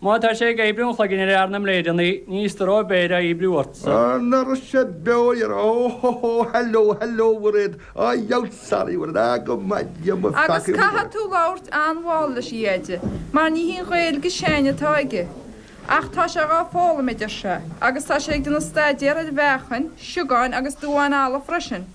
Má tá sé ag oibriú an chloiginn ar fhear na mbléideanna, ní is do Roibeard a oibriú ortsa. Ar ndóigh sé beo iar Ó hó hó hello hello Mhuiréad a dhiabhail sorry Mhuiréad ah go maithe Dia mo pheacaí Agus caithfidh tú labhairt an-mhall leis a Dheaide mar ní hí an Ghaeilge s'againne atá aige Ach tá sé dhá foghlaim a deir sé agus tá sé ag déanamh staidéar ar mheachain, siogáin agus duáin alla freisin.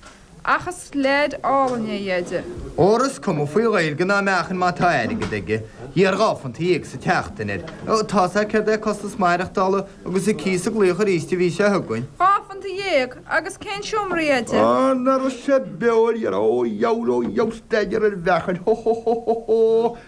Ach is leaid álainn é a Dheaide. Óra is cuma faoi Ghaeilge ná meachain má tá airgead aige, iarr dhá phunt dhéag sa tseachtain air. Tá's agat céard é costas maireachtála agus an cíos ag glaoch aríst an mhí seo chugainn. Dhá phunt dhéag? Agus cén seomra a Dheaide? Á, na Rosa Beoil, dhera, ó a dhiabhail ó a dhiabhail staidéar ar mheachain, hó hó hó hó hó!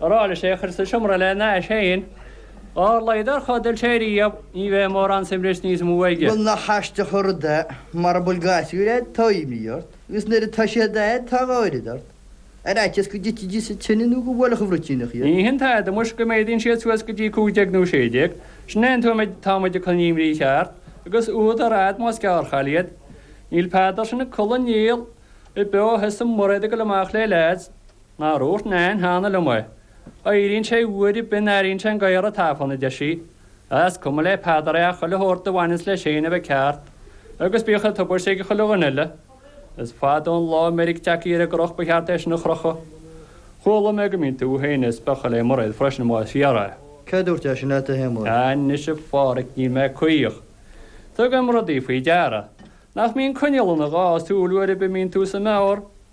Ar aghaidh leis é a chur sa seomra lena ais féin. Dhá laghad ar chodail sé riamh, ní bheidh mórán suaimhnis níos mó aige. Bhuel, nach aisteach an rud é, mara bhfuil gasúir agat tá imní ort, agus nuair atá siad ag gáirid ort, ar fhaitíos go dtitfidís sa tine nó go mbuailfeadh an bhruitíneach iad. Ní hin tada, muis, go méadaíonn siad suas go dtí cúig déag nó sé déag. Sin é an t-am a dtagann an imní cheart, agus úd ar fad, más gearrchailí iad. Níl Peadar sin ag codladh néal ar bith ó thosaigh Muiréad ag goil amach le leaids. Mar a dúirt Nain cheana liom é. Éiríonn sé uair ar bith a n-airíonn sé an gadhar ag tafann, a deir sí. Is cuma le Peadar é ach chuile shórt a bhaineanns leis féin a bheith ceart. Agus bíodh sé tubaiste ag chuile dhuine eile. Is fada an lá meirg ag teacht ar an gcroch ba cheart é sin a chrochadh. Chuala mé go mbíonn tú féin ag spochadh le Muiréad freisin más fíor é. Cé dúirt é sin leat a Shéamuis? Anois a Phádraic níl mé caoch. Tugaim rudaí faoi deara. Nach mbíonn coinneal ina dhá súil uair ar bith a mbíonn tú sa mbeár?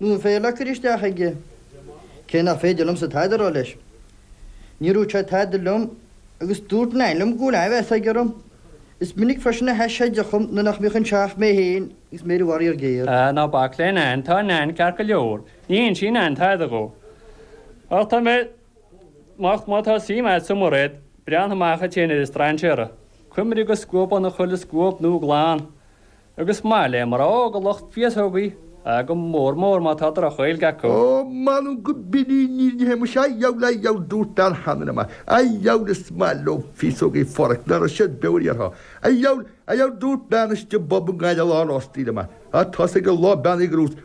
Nuair a phléactar isteach aige, cé nach féidir liomsa tada a rá leis, níor dhúirt sé tada liom agus dúirt Nain liom go bhfuil an-mheas aige orm. Is minic freisin a theith sé de chum nuair nach mbeadh an teach, mé féin agus Mary Mhary ar géar. Ná bac le Nain, tá Nain ceart go leor. Ní inseoidh Nain tada dhó. Ach tá mé moch má tá suim agatsa i Muiréad, breathnaigh amach duit féin ar an strainséara, cuimhnigh go scuabann chuile scuab nua glan, Agus maith le mná óga lucht féasógaí go mór mór má tá droch-Ghaeilge acu. Ó, m'anam go b'in í an fhírinne muis, a' diabhal, a' diabhal, dúirt bean Hanrahan, a' diabhal is maith leo féasógaí forc, ná raibh siad beomhar orthu, a' diabhal, a' diabhal, dúirt bean istigh i bpub i nGaillimh lá na rástaí liom, a, a, tá's ag an lá beannaithe gur dhúirt,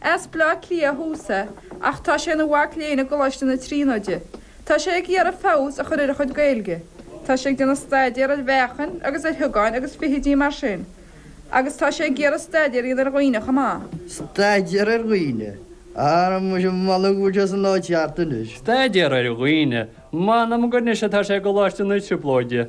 As Baile Átha Cliath thuas é, ach tá sé ina mhac léinn i gColáiste na Tríonóide. Tá sé ag iarraidh feabhas a chur ar a chuid Gaeilge. Tá sé ag déanamh staidéar ar mheachain agus ar shiogáin agus feithidí mar sin, agus tá sé ag iarraidh staidéar a dhéanamh ar dhaoine chomh maith. Staidéar ar dhaoine? Ara muis, m'anam go bhfuil sé san áit cheart anois. Staidéar ar dhaoine? M'anam gur anois atá sé i gColáiste na Trioblóide.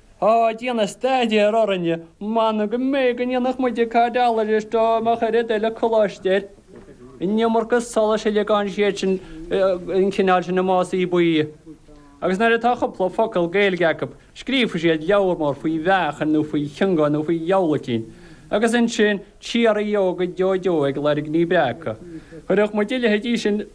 ag déanamh staidéir orainne, mana go mbeidh in éineacht muid ag cairt eallaigh is dó má chuirfidh duil a coláiste air. An iomarca solais uilig gan siad sin an cineál sin i Másaí Buí. Agus nuair atá cúpla focal Gaeilge acu, scríobhfaidh siad leabhar mór faoi mheachain nó faoi chionga nó faoi gheolaicín. Agus ansin, cíoraí ióga deó deó ag lorg ní breágtha. Chuirfeadh muid a leithéidí sin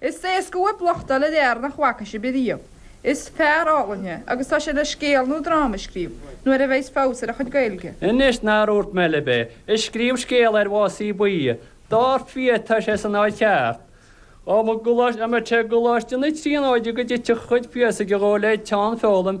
Is éasca uaibh locht a fháil ar fhear nach bhfaca sibh riamh. Is fear álainn é, agus tá sé le scéal nó dráma a scríobh, nuair a bheas feabhas ar a chuid Gaeilge. Anois, nár dhúirt mé libh é? Ag scríobh scéal ar Mhásaí Buí é. Dár fia, tá sé san áit cheart. Ó mo ghuláiste, an mbeidh sé i gColáiste na Tríonóide go dtitfidh a chuid féasóige dhó le teann foghlaim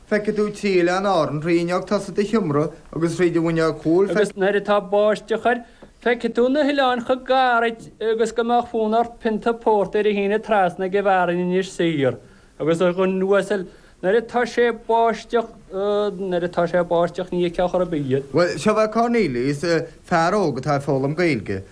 Feicfidh tú trí oileán Árann thrí fhuinneog tosaigh do sheomra agus thríd an bhfuinneog chúil. Feicfidh. Agus nuair atá báisteach air, feicfidh tú na hoileáin chomh gar duit agus go mbeadh fonn ort pionta pórtair a shíneadh trasna ag an bhfear in Inis Oírr agus a dhuine uasail nuair atá sé báisteach. Nuair atá sé báisteach, ní fheicfeá chor ar bith iad. Bhuel, seo é Cornelius, fear óg atá ag foghlaim Gaeilge.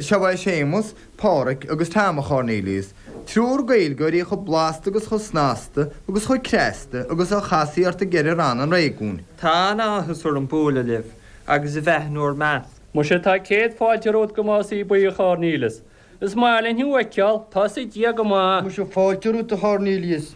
Seo é Séamus, Pádraic agus Tom a Chornelius, triúr Gaeilgeoirí chomh blasta agus chomh snasta agus chomh cneasta agus a chasfaí ort i gceithre ranna an réigiúin. Tá an-áthas orm bualadh libh agus a bheith in bhur measc. Muise tá céad fáilte romhat go Másaí Buí a Chornelius. Is maith linn thú a fheiceáil, tá a fhios ag Dia gur maith! Muise fáilte romhat a Chornelius.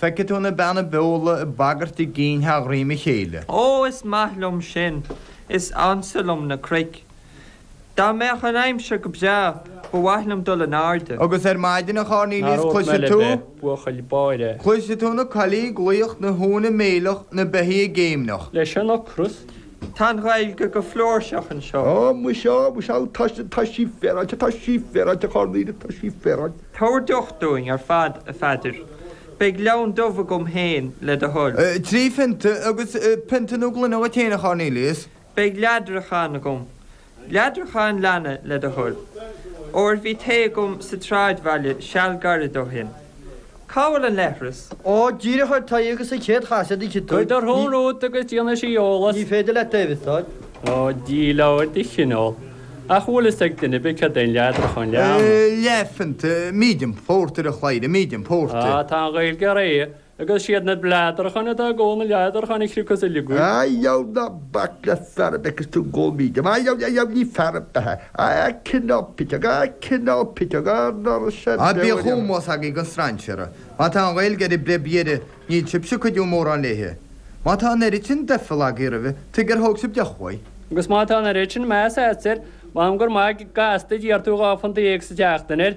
Feicfidh tú na Beanna Beola ag bagairt a gcinn thar dhroim a chéile. Ó, is maith liom sin. Is ansa liom na cnoic. Dá mbeadh an aimsir go breá, ba mhaith liom dul in airde. Agus ar maidin, a Chornelius, cloisfidh tú. Nár oth mé le bheith buachaill báire. Cloisfidh tú na coiligh ag glaoch, na huain ag méileach, na beithígh ag géimneach. Leis an ocras Tá an Ghaeilge go flúirseach anseo. Tá muise, muise ann. Tá sí, tá sí féaráilte, tá sí féaráilte, a Chornelius, tá sí féaráilte. Tabhair deoch dúinn ar fad, a Pheadair. Beidh leann dubh agam féin, le do thoil. Trí phionta, agus pionta nó gloine dhuit féin, a Chornelius. Beidh leadrachán agam. Leadrachán leanna le do thoil, óir bhí tae agam sa tsráidbhaile seal gairid ó shin. Cá bhfuil an leithreas? Ó, díreach ar t'aghaidh agus an chéad chasadh do chiotóig. Cuir do shrón romhat agus déanfaidh sí eolas. Ní féidir leat taobh istigh. Ó, díol leabhair de chineál. Ach bhfuil fhios ag duine ar bith céard é an leadrachán leanna? Leathphionta, medium porter a chleithire, medium porter. Ah, tá an Ghaeilge réidh. Agus 'siad na bleadracháin atá ag ól na leadracháin a chríochnós uilig í. A dheadh ná bac le fear ar bith agus tú gó míde. A dheadh, a dheadh ní fear ar bith é. A cineál piteog, a cineál piteog, a ndoras ar bith. Bíodh ómós agaibh don strainséara. Má tá an Ghaeilge ar an bpreib dheiridh, níl sibhse ag cuidiú mórán léithi. Má tá an oiread sin doichill agaibh roimhe, tuige ar thóg sibh deoch uaidh. Agus má tá an oiread sin measa agatsa air, m'anam gur maith gasta a d'iarr tú dhá phunt dhéag sa tseachtain air.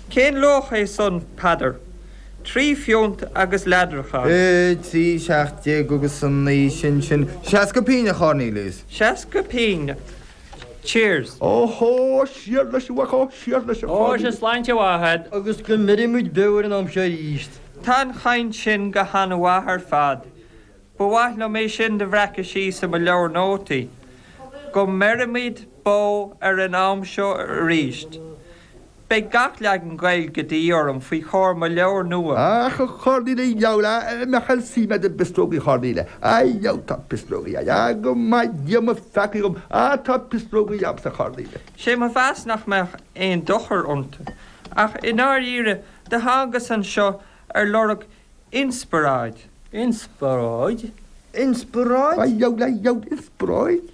Cén luach é san, Peadar? Trí phionta agus leadradh ann. Trí seacht déag agus a naoi, sin, sin, seasca pínn, a Chornelius. Seasca pínn. Cheers. Óhó, siar leis, a mhac ó, siar leis, a Chorn. Ó, sea, sláinte mhaith a'd. Agus go mbeiridh muid beo ar an am seo aríst. Tá an chaint sin go han-mhaith ar fad. Ba mhaith liom é sin do bhreacadh síos i mo leabhar nótaí. Go mbeiridh muid beo ar an am seo aríst. Beidh gach leagan Gaeilge de dhíth orm faoi chomhair mo leabhar nua. Ach a Chornelius a mheall shíl mé gur pisreogaí a Chornelius a fheileann. Tá pisreogaí a'm go maithe Dia mo pheacaí dhom ach tá pisreogaí a'msa a Chornelius. Sé mo mheas nach mbeadh aon dochar iontu ach i ndáiríre do thángas anseo ar lorg inspioráid. Inspioráid? Inspioráid? Ai, ai, ai, inspioráid?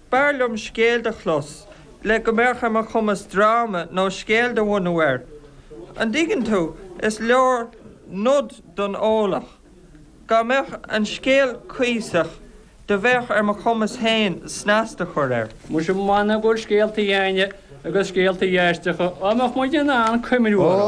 B'fhearr liom scéal do chlos le go mbeadh ar mo chumas dráma nó scéal do bhunú air. An dtuigeann tú, is leor nod don eolach. Dá mbeadh an scéal cuíosach do bheadh ar mo chumas féin snas do chur air. Muise mh'anam go bhfuil scéaltaí a'ainne agus scéaltaí aisteacha, dá mbeadh muid in ann cuimhniú orthu.